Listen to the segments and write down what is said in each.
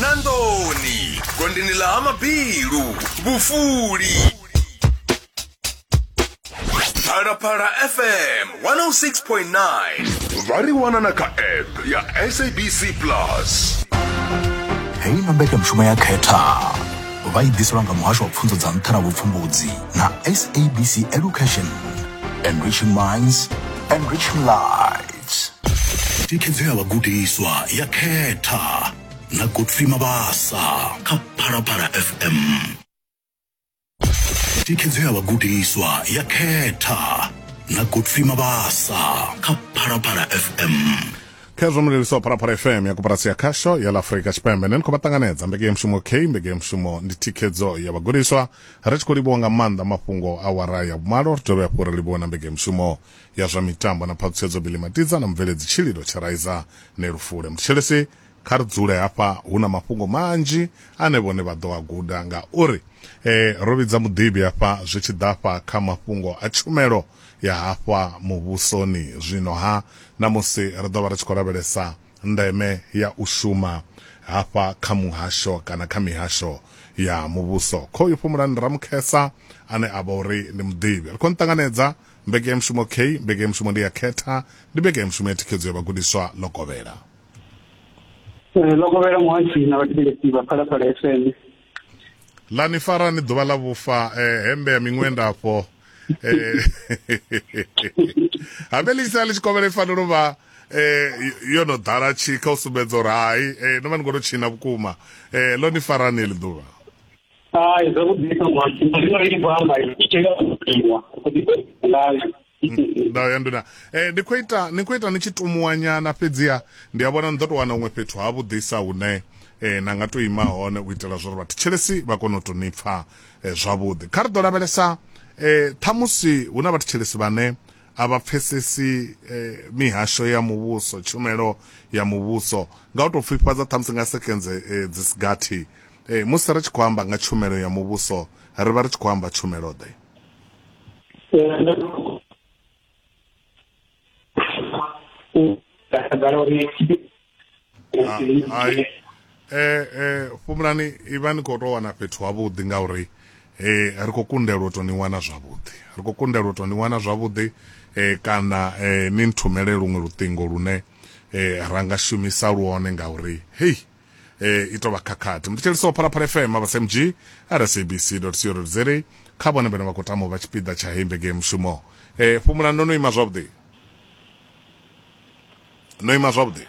na ndoni gondini la ha mabilu vhufuli phalaphala fm 106.9 vha ri wana na kha app ya sabc plus heyi na mbekanyamushumo ya khetha vha i ḓiselwa nga muhasho wa pfunzo dza nṱha na vhupfumbudzi na sabc education enriching minds enriching lives thikhedzo ya vhagudiswa ya khetha na godfrey mabasa kha phalaphala fm thikhedzo ya vhagudiswa ya khetha na godfrey mabasa kha phalaphala fm khezwo mulelisa wa phalaphala fm ya koporasi ya khasho ya la afurika tshipembe ne ni khou vha ṱanganedza mbekeyamushumo k mbekeyamushumo ndi thikhedzo ya vhagudiswa ri tshi khou livhuwa nga maanḓa mafhungo a wara ya vhumalo ri dovhe hafhu ri livhuwe na mbekeyamushumo ya zwa mitambo na phaṱhutshedzo Billy Matidza na mubveledzi tshililo Tshiraiza Nelufule. Muthetshelesi kha ri dzule hafha hu na mafhungo manzhi ane vhone vha ḓo a guda ngauri eh, ro vhidza muḓivhi hafha zwi tshi ḓa fha kha mafhungo a tshumelo ya hafha muvhusoni zwino ha ṋamusi ri ḓo vha ri tshi khou lavhelesa ndeme ya u shuma hafha kha muhasho kana kha mihasho ya muvhuso khoyu fhumulani ramukhesa ane a vha uri ndi muḓivhi ri khou nṱanganedza Mbekanyamushumo K, Mbekanyamushumo ndi ya Khetha ndi mbekanyamushumo ya thikhedzo ya vhagudiswa Lokovhela. Eh, Lokovhela Muhasho na vhathetshelesi vha Phalaphala FM. La ni fara ni ḓuvha ḽa vhufa eh, hembe ya miṅwenda afho eh, habe ḽi tshi ḽi tshi kovhela i fanela u vha eh, yo no ḓala tshikha u sumbedza uri hai eh, no vha ni khou tou tshina vhukuma eh, ḽo ni farani heḽi ḓuvha Hai, zwa vhudisa mwathi, ndi vha ndi khou amba i tea u ḓiwa, u ḓi ngayo. Ndau ya nduna. Eh ndi khou ita ni khou ita ni tshi tumuwa nyana fhedziha ndi a vhona ni ḓo to wana huṅwe fhethu ha vhuḓisa hune eh na nga to ima hone u itela zwa uri vhathu tshelesi vha kone u to ni pfa eh, zwavhuḓi. Kha ri ḓo lavhelesa eh ṱhamusi hu na vhathu tshelesi vhane a vha pfesesi eh, mihasho ya muvhuso tshumelo ya muvhuso nga u to pfifhadza ṱhamusi nga sekenze eh, dzi sigathi Ee, musi ri tshi khou amba nga tshumelo ya Muvhuso, ri vha ri tshi khou amba tshumelo-ḓe? Hai, fhumulani, i vha ni khou tou wana fhethu havhuḓi ngauri ri khou kundelwa u tou ni wana zwavhuḓi. Ri khou kundelwa u tou ni wana zwavhuḓi kana ni nthumele luṅwe luṱingo lune ra nga shumisa lwone ngauri hei eh, i tou vha khakhathi mu thetshelisa wa phalaphala fm vhasmg rsabc co za kha vhone vhene vha khou tama u vha tshipiḓa tsha heyi mbege mushumo eh, fhumula ndo no ima zwavhuḓi no ima zwavhuḓi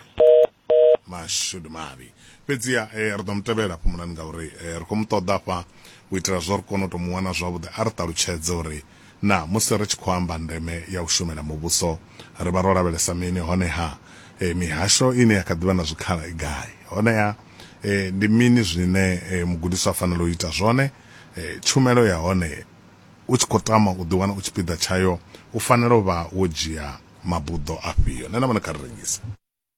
mashudu mavhi fhedziha eh, ri ḓo mu tevhela fhumulani ngauri eh, ri khou mu ṱoḓa fha u itela zwo ri kone u tou mu wana zwavhuḓi a ri ṱalutshedze uri Naa musi ri tshi khou amba ndeme ya u shumela Muvhuso, ri vha ro lavhelesa mini, hone-ha mihasho ine ya kha ḓi vha na zwikhala i gai? Hone-ha ndi mini zwine mugudiswa a fanela u ita zwone? Tshumelo ya hone, U tshi khou tama u ḓiwana u tshipiḓa tshayo, u fanela u vha wo dzhia mabuḓo afhio? Nṋe na vhone kha ri rengise.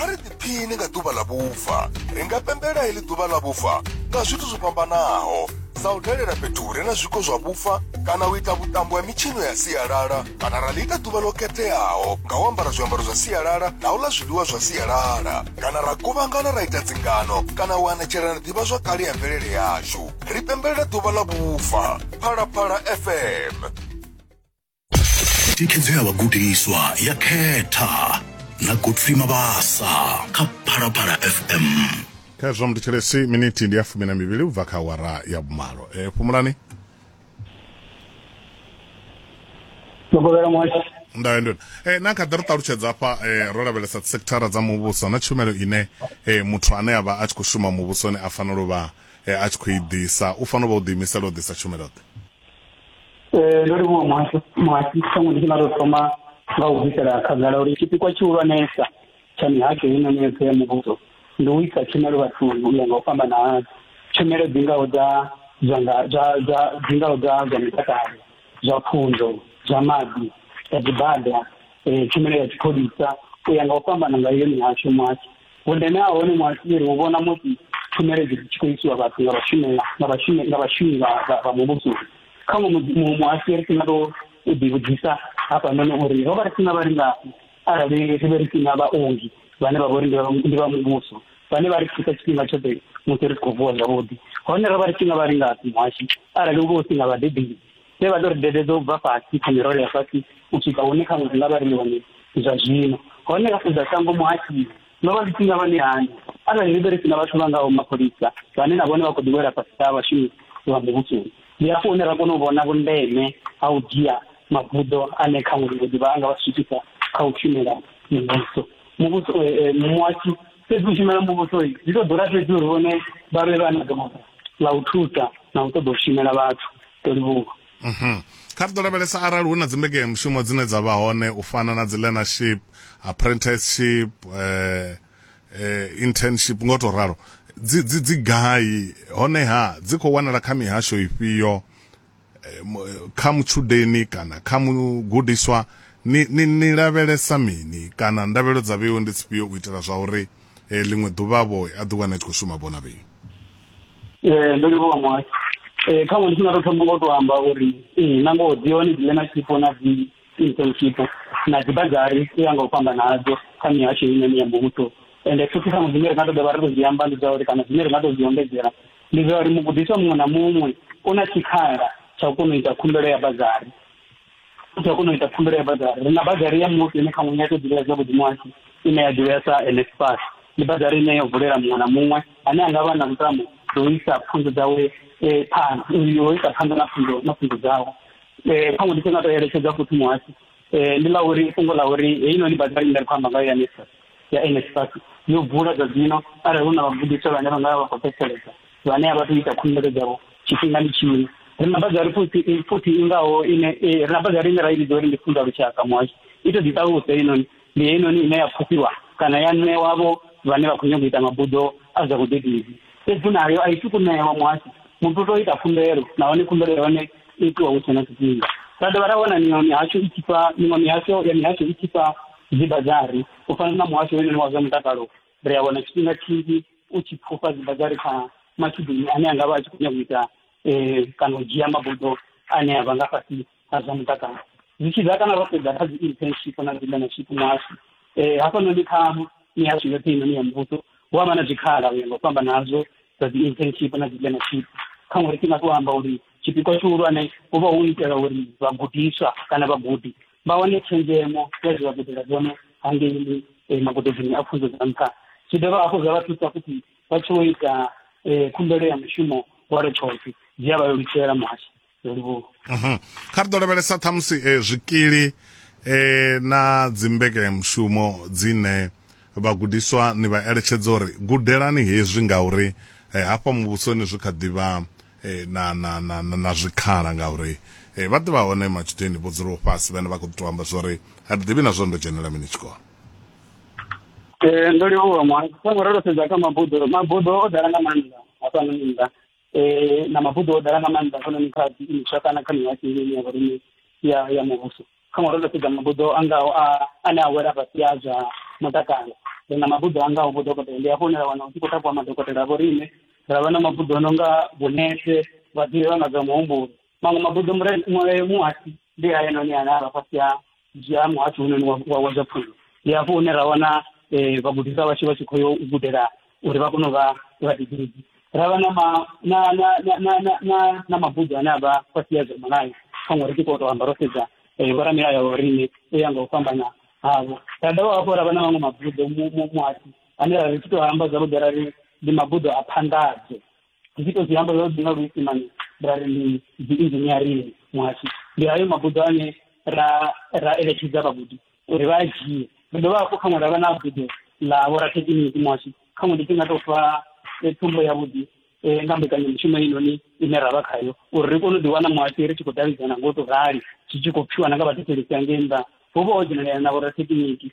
a ri ḓiphini nga ḓuvha ḽa vhufa ri nga pembela heḽi ḓuvha ḽa vhufa nga zwithu zwo fhambanaho sa u dalela fhethu hure na zwiko zwa vhufa kana u ita vhuṱambo ha mitshino ya sialala kana ra ḽi ita ḓuvha ḽo khetheaho nga u ambara zwiambaro zwa sialala na u ḽa zwiḽiwa zwa sialala kana ra kuvhangana ra ita dzingano kana u anatshelana ḓivha zwa kale ya mvelele yashu ri pembelela ḓuvha ḽa vhufa phalaphala fm thikhedzo ya vhagudiswa ya khetha na godfrey mabasa kha phalaphala fm kha zwa muthethelesi miniti ndi ya fumi na mivhili u bva kha awara ya vhumalo e fhumulani Mukovhela Moshi. ndayo ndona e na kha ḓi ri ṱalutshedza hafha e, ro lavhelesa sekithara dza muvhuso na tshumelo ine e, muthu ane a vha a tshi khou shuma muvhusoni a fanela u vha e, a tshi khou i ḓisa u fanela u vha u ḓiimisela u ḓisa tshumelo ḓe Eh, ndo livhuwa muhasho muhasho ṱhaṅwe ndi tshi nga tou thoma nga u bvisela khagala uri tshipikwa tshihulwanesa tsha mihasho ino yoṱhe ya muvhuso ndi u isa tshumelo vhathuni u ya nga u fhambana hazwo tshumelo dzi ngaho dza zwa nga zwa zwa dzi ngaho dza zwa mutakalo zwa pfunzo zwa maḓi zwa dzibada eh, tshumelo ya tshipholisa u ya nga u fhambana nga iyo mihasho muhasho Vhundeme ha hone muhaṱumeli hu vhona musi tshumelo dzi tshi khou isiwa vhathu nga vhashumi nga vhashumi nga vhashumi vha muvhuso kha muhasho ri sina tou u ḓivhudzisa hafhanoni uri ro vha ri sina vhalingafhi arali ri vhe ri sina vhaongi vhane vha vha uri ndi vha muvhuso vhane vha ri thusa tshifhinga tshoṱhe musi ri tshi khou vuwa zwavhuḓi hone ro vha ri tshi nga vhalingafhi muhashi arali u vha u si nga vhadededzi vhe vha ḓo ri dededza u bva fhasi kha mirole ya fhasi u swika hune khaṅwe ri nga vha ri ni hone zwa zwino hone ra sedza shango muhashimu no vha zwithu nga vhane hani arali ri vhe ri si na vhathu vha ngaho mapholisa vhane na vhone vha khou ḓiwela fhasi ha vhashumi vha muvhusoni ndi hafho hune ra kona u vhona vhundeme ha u dzhia mabuḓo ane khaṅwe ri ḓivha a nga vha swikisa kha u shumela muvhuso muvhuso eh, eh, muhashu fhedzi u shumela muvhuso zwi ḓo ḓura fhedzi uri vhone vha vhe vha na ḓorobo ḽa u thusa na u ṱoḓa u shumela vhathu ḓo livhuwa mhm. kha ri ḓo lavhelesa arali hu na dzimbekenyamushumo dzine dza vha hone u fana na dzi learnership apprenticeship eh, eh, internship ngo to ralo dzi dzi dzi gai honeha dzi khou wanala kha mihasho ifhio eh, eh, kha mutshudeni kana kha mugudiswa ni, ni, ni lavhelesa mini kana ndavhelo dza vheo ndi dzifhio u itela zwa uri eh, ḽiṅwe ḓuvha vho a ḓi wana tshi khou shuma vhona vheo ee ndo livhowa mwayo ee khaṅwe ndi tshi nga tou thoma ngo tou amba uri ee na ngoho dzi hone dzine na tshifho na dzi Eastern Cape na dzibhagari u ya nga u fhambana hadzo kha mihasho heinoni ya muvhuso ende futhi ṱhaṅwe dzine ri nga to dovha ri to zwi amba ndi dza uri kana dzine ri nga to zwi ombedzela ndi dza uri mugudiswa muṅwe na muṅwe u na tshikhala tsha u kona u ita khumbelo ya bagari u tea u kona u ita khumbelo ya bagari ri na bagari ya muthu ine khaṅwe ya to ḓivhea zwavhuḓi muhasho ine ya ḓivhea sa NSFAS ndi bagari ine yo vulela muṅwe na muṅwe ane a nga vha na lutamo ḓo isa pfunzo dzawe phanḓa yo isa phanḓa na pfunzo na pfunzo dzawe eh kha ndi sina to eletshedza futhi muhasi eh ndi la uri fhungo la uri heyi noni badela ine khou amba nga ya nisa ya NSFAS yo bula dza dzino arali hu na vhagudiswa vhane vha nga vha khou fhedzisela vhane a vha tou ita khumbelo dzavho tshifhingani tshino ri na bazari futhi futhi ingaho ine ri na bazari ine ra i vhidza uri ndi funda lushaka muhasho i to ḓi ṱaluse inoni ndi heinoni ine ya pfufhiwa kana ya ṋewa-vho vhane vha khou nyanga u ita mabuḓo a zwa vhudededzi. Fhedzi nayo a i tu ku ṋewa muhasho, muthu u tou ita khumbelo nahone khumbelo ya hone i itiwa hu tshe na tshifhinga. Ra dovha ra wana miṅwe mihasho i tshi fha miṅwe mihasho ya mihasho i tshi fha dzibadzari u fana na muhasho hoyunoni wa zwa mutakalo. Ri a wana tshifhinga tshinzhi u tshi pfufha dzibadzari kha matshudeni ane a nga vha a tshi khou nyanga u ita kana u dzhia mabuḓo ane a vha nga fhasisa. na zwa mutakalo zwi tshi ḓa kana ro sedza kha dzi internship na dzi learnership nashu um hafhanoni kha mihasho yoṱhe inoni ya muvhuso hu avha na zwikhala uya nga u fhamba nazwo dza dzi internship na dzi learnership kha ṅwari ṱinga to amba uri tshipikwa tshihulwane hu vha hu itela uri vhagudiswa kana vhagudi vha wane tshenzhemo ya zwi vha gudela zwone hangei eh, magudedzini a pfunzo dza nṱha zwi dovha hafhu zwa vha thusa futhi vha tshi wo ita eh, khumbelo ya mushumo wa retshothi zwi a vha lelutshela muhasho mhm. kha ri ḓo lavhelesa ṱhamusi eh, zwikili eh, na dzimbekanyamushumo dzine vhagudiswa ni vha eletshedza uri gudelani hezwi ngauri eh, hafha muvhusoni zwi kha ḓivha eh, na, na, na, na, na zwikhala ngauri eh, vha ḓivha hone matshudeni vho dzulaho fhasi vhane vha khou ḓi to amba zwa uri a ri ḓivhi na zwo ndo dzhenela mini tshikolo eh, ndo livhuwa mwa songo ro sedza kha mabuḓo mabuḓo o ḓala nga maanḓa a fhano nnḓa eh, na mabuḓo o ḓala nga maanḓa hafhanoni kha imiswa kana kha mihasho ine ya vhorine ya ya muvhuso kha ngori ndo sedza mabuḓo a ngaho a ane a wela fhasi a zwa mutakalo ri na mabuḓo a ngaho vhodokotela ndi hafho hune ra wana u tshi khou takuwa madokotela a vhorine ra vha na mabuḓo o no nga vhunese vhaḓivhi vha nga zwa muhumbulo maṅwe mabuḓo muhasi ndi hayanoni ane a vha fhasi ha dzhia muhasi hunoni wa zwa pfunzo ndi hafho hune ra wana um vhagudiswa vhashu vha tshi khou yo u gudela uri vha kone u vha vhaḓibiriki ra vha na mabuḓo ane a vha fhasi ya zwa mulayo kha ngori tshi khou tou amba ro sedza um vhoramilayo wa riṋe u ya nga u fhambana havho ra dovha hafhu ra vha na maṅwe mabuḓo muhasi ane ra ri tshi tou amba zwavhuḓi ra ri ndi mabuḓo a phanḓadzo zwi to zwi amba zwa dzi nga luisimane ra ri ndi dzi inzhiniarini muhasho ndi hayo mabuḓo ane ra ra eletshedza vhagudi uri vha a dzhie ri dovha hafhu khaṅwe ra vha na buḓo ḽa vhorathekiniki muhasho khaṅwe ndi tshi nga tou fa eh, tsumbo yavhuḓi eh, nga mbekanyamushumo inoni ine ra vha khayo uri ri kone u ḓiwana muhasho ri tshi khou davhidzana ngo to rali zwi tshi khou pfiwa na nga vhathetshelesi angei nnḓa ho vha ho dzhenelea na vhorathekiniki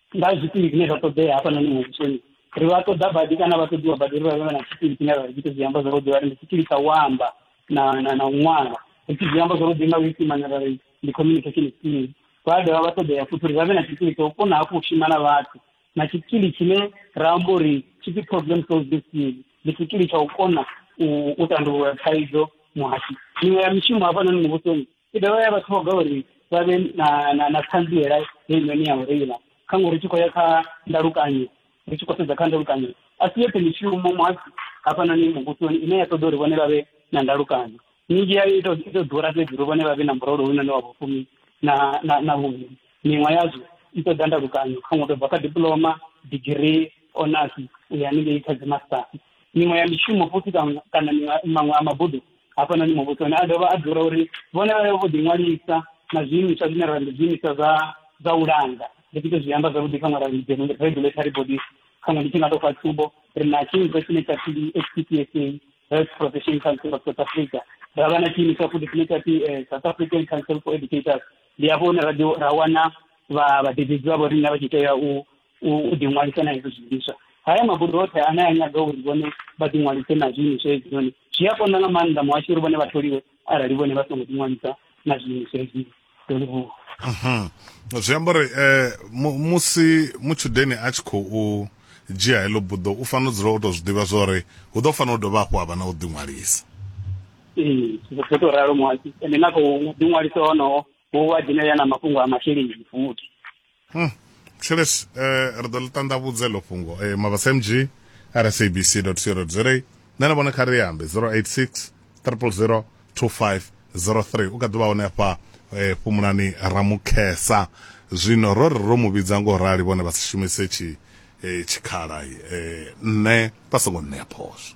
nga zwikili zwine zwa ṱoḓea hafhanoni muvhusoni ri vha ṱoḓa badi kana vha ṱoḓiwa badi ri vha vhe na tshikili tshine ra ita zwi amba zwavhuḓi vha ri ndi tshikili tsha u amba na na na u ṅwala ri tshi zwi amba zwavhuḓi nga luisimane ra ri ndi communication skills vha dovha vha ṱoḓea futhi uri vha vhe na tshikili tsha u kona hafhu u shuma na vhathu na tshikili tshine ra amba uri tshipfi problem solving skill ndi tshikili tsha u kona u tandulula thaidzo muhashi miṅwe ya mishumo hafhanoni muvhusoni i dovha ya vha ṱhoga uri vha vhe na na na ṱhanziela heinoni ya u reila kha ngori tshi khou ya kha ndalukanyo ri tshi khou sedza kha ndalukanyo a si yoṱhe mishumo muhasi hafhanoni muvhusoni ine ya ṱoḓa uri vhone vha vhe na ndalukanyo minzhi yayo ito ito ḓura fhedzi uri vhone vha vhe na murolo hounoni wa vhufumi na na na vhuvhili miṅwe yazwo i ṱoḓa ndalukanyo kha ṅwe tou bva kha diploma digirii onasi u ya haningei kha dzimastasi miṅwe ya mishumo futhi kana maṅwe a mabuḓo hafhanoni muvhusoni a dovha a dzula uri vhone vha vhe vho ḓiṅwalisa na zwiimiswa zwine ra ndi zwiimiswa zwa zwa u langa ndi tshi to zwi amba zwavhuḓi kha ṅwala regulatory bodies khaṅwe ndi tshi nga tou fha tsumbo ri na tshiimiswa tshine tsha pfi h p p s a health profession council of south africa ra vha na tshiimiswa futhi tshine tsha pfi eh, south african council for educators ndi hafho hune ra wana vhadededzi vha vho riṋe vha tshi tea u u ḓiṅwalisa na hezwo zwiimiswa haya mabodo oṱhe ane a nyaga uri vhone vha ḓiṅwalise na zwiimiswa hezwinoni zwi a konḓa nga maanḓa muhasho uri vhone vha tholiwe arali vhone vha songo ḓiṅwalisa na zwiimiswa hezwi ḓo livhuwa mhm. zwi amba uri um musi mutshudeni a tshi khou dzhia heḽo buḓo u fanela u dzula u tou zwi ḓivha zwa uri hu ḓo fanela u dovha hafhu ha vha na u ḓiṅwalisa ee zwo tou ralo muhasho ende na khou ḓiṅwalisa honoho u vha dzhenelela na mafhungo a masheleni futhi Hmm. Thilesi, eh, ri ḓo ḽi ṱanḓavhudza eḽo fhungo. Eh, Mabasa MG, rsabc.co.za. Nṋe na vhone kha ri ambe 086 000 2503. U kha ḓi vha hone hafha eh, fhumulani Ramukhesa. Zwino ro ri ro mu vhidza ngo rali vhone vha si shumise tshi eh, tshikhala eh, nṋe vha songo nṋea phosho.